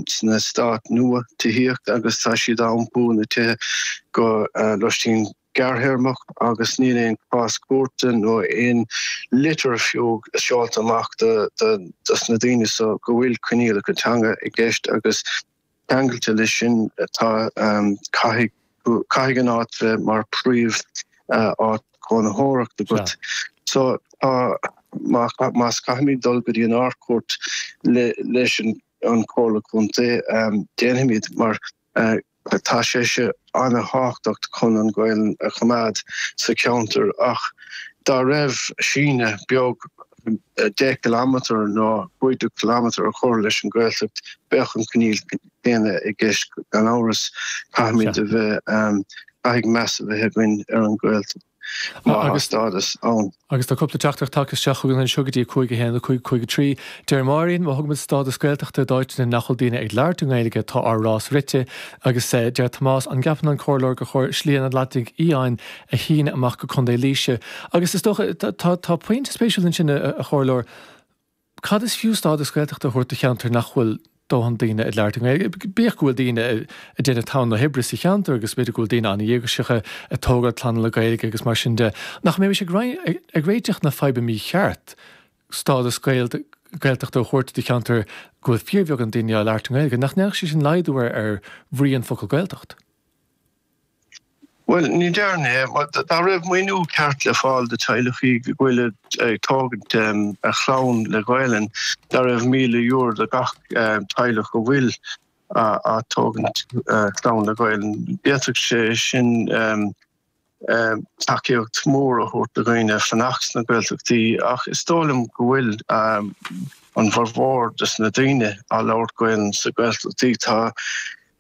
sna stáit nua tithíochta agus tá siad á iompú ina dtithe do lóistín gearrthéarmach agus níl aon cás cúirte nó aon litir fiú seolta amach dos na daoine seo go bhfuil coinníollacha teanga i gceist agus ceangailte leis sin tá caithfidh Caithfidh an áit bheith mar príomh áit cónaitheoireachta agat. So tá, más caithfimid dul go dtí an Ardchúirt leis an Chomhairle Contae, déanfaimid mar tá sé seo an-thábhachtach chun an Ghaelainn a choimeád sa cheantar ach dá raibh síneadh beag deich gciliméadar nó cúig déag ciliméadar a chur leis an Ghaeltacht bheadh an coinníoll chéanna i gceist, gan amhras, caithfimid a bheith, caithfidh meas a bheith againn ar an Ghaeltacht má tá stádas ann. Agus tá cúpla teachtaireacht tagtha isteach chugainn anseo go dtí 5-1, 5-3. Deir Máire, Má thugaimid stádas Gaeltachta d'áiteanna nach bhfuil daoine ag labhairt an Ghaeilge tá ár rás rite. Agus deir Tomás, An gceapann an Comhairleoir gur chóir Slí an Atlantaigh Fhiáin a shíneadh amach go Contae Laoise? Agus is dócha, tá pointe spéisiúil ansin, a Chomhairleoir, Cad is fiú stádas Gaeltachta a thabhairt do cheantar nach bhfuil dóthain daoine ag labhairt na Gaeilge? Bíodh go bhfuil daoine ag déanamh tonn oibre sa cheantar agus b'fhéidir go bhfuil daoine an-dhíograiseacha ag tógáil clanna le Gaeilge agus mar sin de, nach mbeimis ag réiteach na faidhbe mícheart stádas Gaeltachta a thabhairt do cheantar go bhfuil fíorbheagán daoine ag labhairt na Gaeilge? Nach ndéanfadh sé sin laghdú ar bhrí an focal Gaeltacht? Bhuel, n'fheadar, mar dá raibh maoiniú ceart le fáil do teaghlachaí go bhfuil ag tógaint a chlann le Gaelainn, dá raibh míle euro do gach teaghlach go bhfuil á tógaint a chlann le Gaelainn, bheadh sé sin tacaíocht mór a thabhairt do dhaoine fanacht sna Gaeltachtaí, ach is dóigh liom go bhfuil an bhformhór des na daoine á labhairt Gaelainn sa Gaeltachtaí. Tá.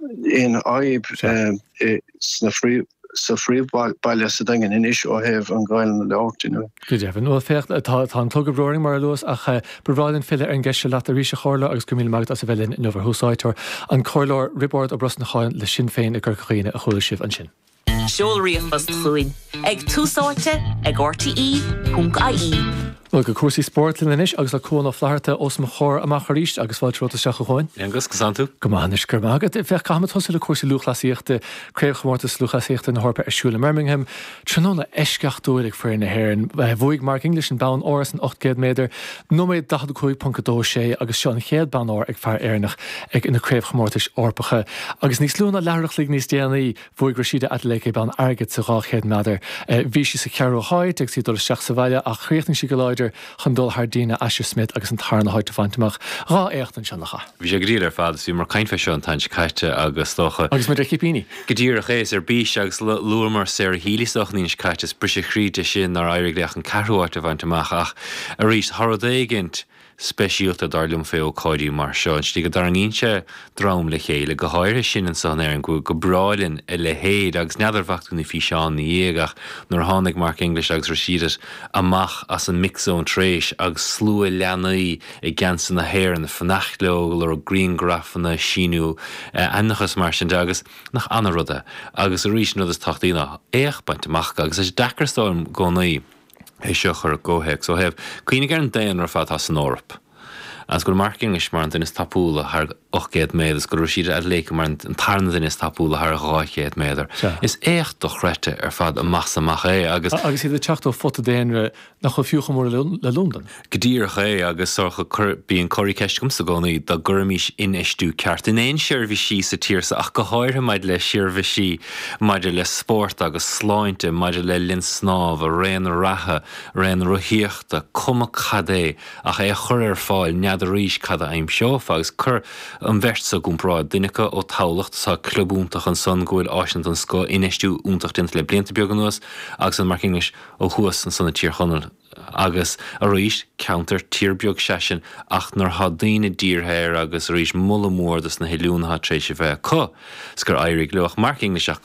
aon fhadhb sa phríomhbhaile sa Daingean anois ó thaobh an Ghaelainne le labhairt inniu. Go deimhin. Bhuel, féach, tá an clog dár mbrú, mar a luas, ach ba bhreá linn filleadh ar an gceist seo leat arís, a Chomhairleoir, agus go raibh míle maith agat as a bheith linn inniu, ar Thús Áite, an Comhairleoir Riobárd Ó Brosnacháin le Sinn Féin i gCorca Dhuibhne, a chuala sibh ansin. Seol ríomhphost chugainn ag Tús Áite ag RTÉ.ie. Go dtí cúrsaí spóirt linn anois agus le Cuán Ó Flatharta os mo chomhair amach arís agus fáilte romhat isteach a Chúáin. Aonghus, conas atá tú? Go maith anois, go raibh maith agat. Féach, caithfimid tosú le cúrsaí lúthchleasaíochta, Craobhchomórtas Lúthchleasaíochta na hEorpa ar siúl i mBirmingham. Tráthnóna eisceachtúil ag foireann na hÉireann. Bhuaigh Mark English an bonn óir san 800 méadar, nóiméad 45.26 agus seo an chéad bonn óir ag fear Éireannach ag na Craobhchomórtais Eorpacha. Agus níos lú ná leathuair a chloig níos déanaí, Bhuaigh Rashida Adeleke bonn airgid sa 200 méadar. Bhí sí sa cheathrú háit agus í ag dul isteach sa bhaile ach chríochnaigh sí go láidir chun dul thar Dina Asher Smith agus an tarna háit a bhaint amach. Dhá éacht ansin a Cháit. Bhí sé go diail ar fad is bhí mé ag caint faoi seo an t-am seo caite agus is dócha. Agus muid ar chipíní. Go díreach é, is ar bís agus luamar Sarah Healy is dócha an Aoine seo caite is briseadh croí di sin nár éirigh léi ach an ceathrú háit a bhaint amach ach arís tá rud éigint, speisialta, dar liom, fé ócáidí mar seo, an tslí go dtarraingíonn sé dream le chéile, go háirithe sinn anso in Éirinn, go breá linn a leithéid, agus n'fheadar, bhfaca tú na físeán ina dhiaidh, ach nuair a tháinig Mark English agus Rashidat amach as an Mixed Zone tar éis, agus slua leanaí i ngeansaithe na hÉireann ag fanacht leo, ag lorg griangrafanna, síniú ainmneacha is mar sin de, agus nach ana-rud é, agus arís, an rud is tábhachtaí ná éacht bainte amach acu, agus tá sé deacair is dóigh liom, i gcónaí. é seo a chur i gcomhthéacs ó thaobh cuimhneamh ar an daonra ar fad atá san Eoraip. Agus go raibh Mark English mar an duine is tapúla thar 800 méadar is go raibh Rashida Adeleke mar an tarna duine is tapúla thar 200 méadar, is éacht dochreidte ar fad amach is amach é agus. Agus iad ag teacht ó phota daonra nach bhfuil fiú chomh mór le Londain. Go díreach é, agus Sorcha, bíonn an cúrfá i gceist agamsa i gcónaí, dá gcuirfimis infheistiú ceart in aon seirbhísí sa tír seo, ach go háirithe maidir le seirbhísí maidir le spórt agus sláinte, maidir le linn snámha, raon reatha, raon rothaíochta, cuma cad é, ach é a chur ar fáil, n'fheadar arís cad a aimseofá, agus cuir an bheirt seo i gcomparáid, duine acu ó Thamhlacht, tá club iontach ansan go bhfuil áiseanna den scoth, infheistiú iontach déanta le blianta beag anuas, agus ansan Mark English ó thuas ansan i Tír Chonaill, agus arís ceantar tír beag seisean ach nuair atá daoine dírithe air agus arís moladh mór dos na hoiliúnaithe tar éis a bheith acu 's gur éirigh leo ach Mark English ach go